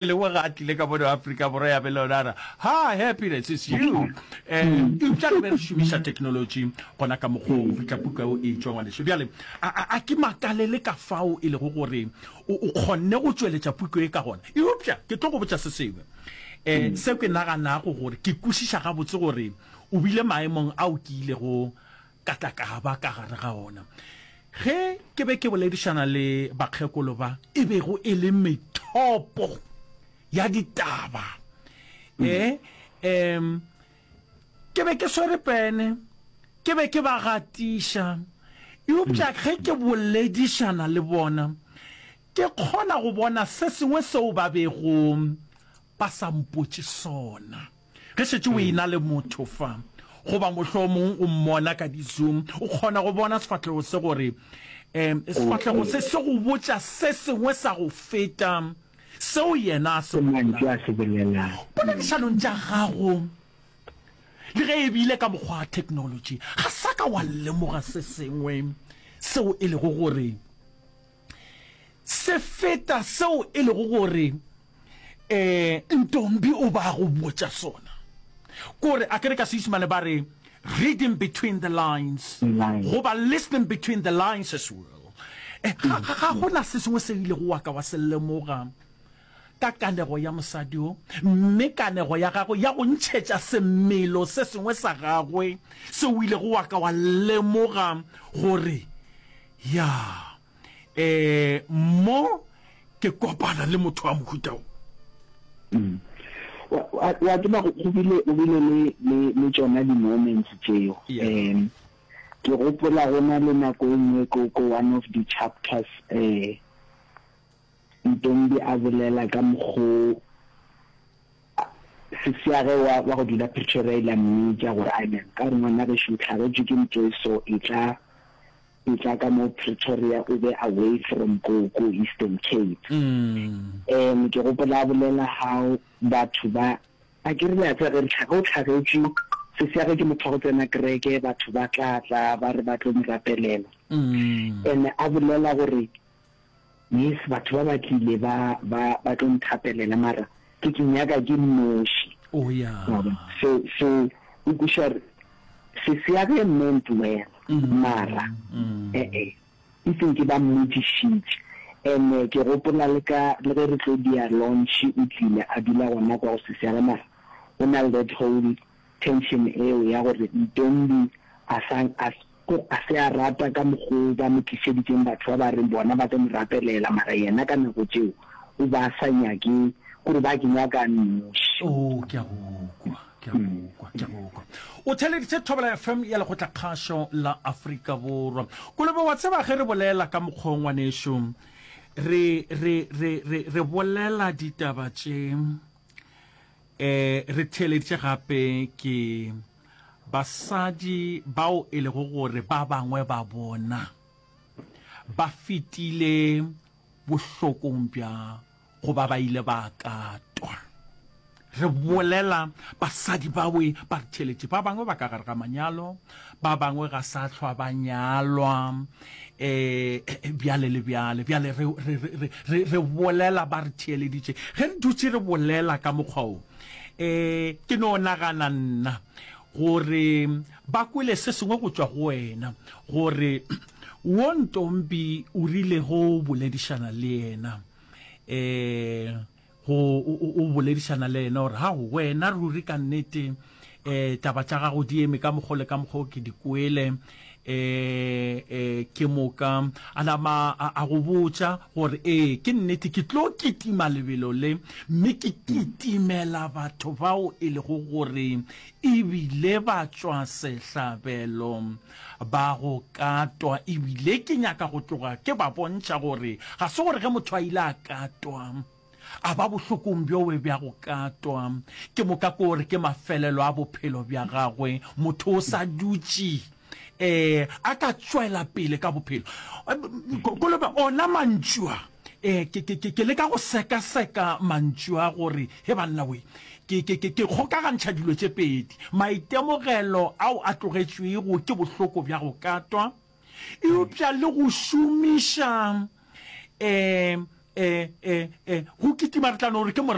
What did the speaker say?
lengwe ga a tlile ka mono Afrika Borwa ya be le yona ra ha happiness is you um eupša re be re šomiša technology gona ka mokgwa go fitlha puka o e tšwa ngwaneso bjale a ke makalele ka fao e lego gore o kgonne go tšweletša puko e ka gona eupša ke tlo go botša se sengwe um seo ke naganago gore ke kwešiša gabotse gore o bile maemong ao ke ilego ka tla ka ba ka gare ga ona ge ke be ke boledišana le bakgekolo ba e bego e le methopo ya ditaba mm. e um ke be ke swere pene ke be ke ba gatiša eupša mm. ge ke boledišana le bona ke kgona go bona se sengwe seo ba begong ba sa mpotše sona Ge šetše o e-na le motho fa, goba mohlomong o mmona ka di-Zoom, o kgona go bona sefahlego se gore sefahlego se se go botša se sengwe sa go feta seo yena a se bolelago. Poledišanong tša gago, le ge e bile ka mokgwa wa theknolotši, ga sa ka wa lemoga se sengwe seo e lego gore Se feta seo e lego gore um Ntombi o ba go botša sona kore a kere ka Seisimane ba re reading between the lines goba listening between the lines as well. Eh, ga gona se sengwe se ile go wa ka wa se lemoga ka kanego ya mosadi wo, mme kanego ya gagwe ya go ntšhetša semelo se sengwe sa gagwe se o ilego wa ka wa lemoga gore, Ya, ee, mo ke kopana le motho wa mohuta wo. Wa, wa, wa tseba go, go bile, go bile le, le, le tšona di-moments tšeo. Um, ke gopola go na le nako e nngwe ko, ko one of the chapters, um, Ntombi a bolela ka mokgo sisi ya ge wa go dula Pretoria ile a mmitša gore a ne ka gore ngwana gešo o hlagetšwe ke ntho e so e tla e tla ka mo Pretoria o be away from ko ko Eastern Cape mm. um ke gopola a bolela how batho ba a ke rile a tsa ge re tlhaga o tlhagetšwe sisi ya ge ke motho wa go tsena kereke batho ba tla tla ba re ba tlo mo rapelela mm. and a bolela gore Yes, batho ba ba tlile ba ba ba tlo nthapelela mara ke ke nyaka ke nnoši. Oh yeah. Wa bona? So so o kweša re se se ya ge meant well mara eh eh e seng ke ba mmotšišitše and eh, ke gopola le ka le ge re tlo dia launch o tlile a dula gona kwa go se se ya ge mara o na le that whole Tension eo ya gore Ntombi a sa a a se a rata ka mokgo ba mo tlišeditseng batho ba ba reng bona ba tlo mo rapelela mara yena ka nako tšeo o ba sa nyake kore ba ke nyaka a nnoši. Oo, ke a go kwa, ke a go kwa, ke a go kwa. O theleditše Thobela FM ya Lekgotlakgašo la Afrika Borwa. Kolobe, wa tseba ge re bolela ka mokgwa wo ngwanešu, re, re, re, re, re bolela ditaba tše, Eh, re theeleditše gape ke basadi bao e lego gore ba bangwe ba bona ba fetile bohlokong bja goba ba ile ba katwa re bolela basadi bawe ba re theeletše ba bangwe ba ka gare ga manyalo ba bangwe ga sa hlwa ba nyalwa um bjale le bjale bjale re, re, re, re, re, re bolela ba re theeleditše ge re dutše re bolela ka mokgwa o um ke no nagana nna gore ba kwele se sengwe go tšwa go wena gore wo ntombi o rilego o boledišana le yena um go o boledišana le yena gore gago wena ruri ka nnete um taba tša gago di eme ka mokgwa le ka mokgwa o ke di kwele um um ke moka a nama a go botša gore ee ke nnete ke tlo kitima lebelo le mme ke kitimela batho bao e lego gore ebile ba tšwa sehlabelo Ba go katwa, ebile ke nyaka go tloga ke ba bontšha gore ga se gore ge motho a ile a katwa a ba bohlokong bjowe bja go katwa, ke moka ke gore ke mafelelo a bophelo bja gagwe. Motho o sa dutše um a ka tšwela pele ka bophelo. Kolobe, ona mantšu a. E, ke, ke, ke, ke leka go sekaseka mantšu a gore, he banna we, ke, ke, ke, ke kgokagantšha dilo tše pedi, maitemogelo ao a tlogetšwego ke bohloko bja go katwa, eupša le go šomiša, e, e, e, e, go kitima re tla no re ke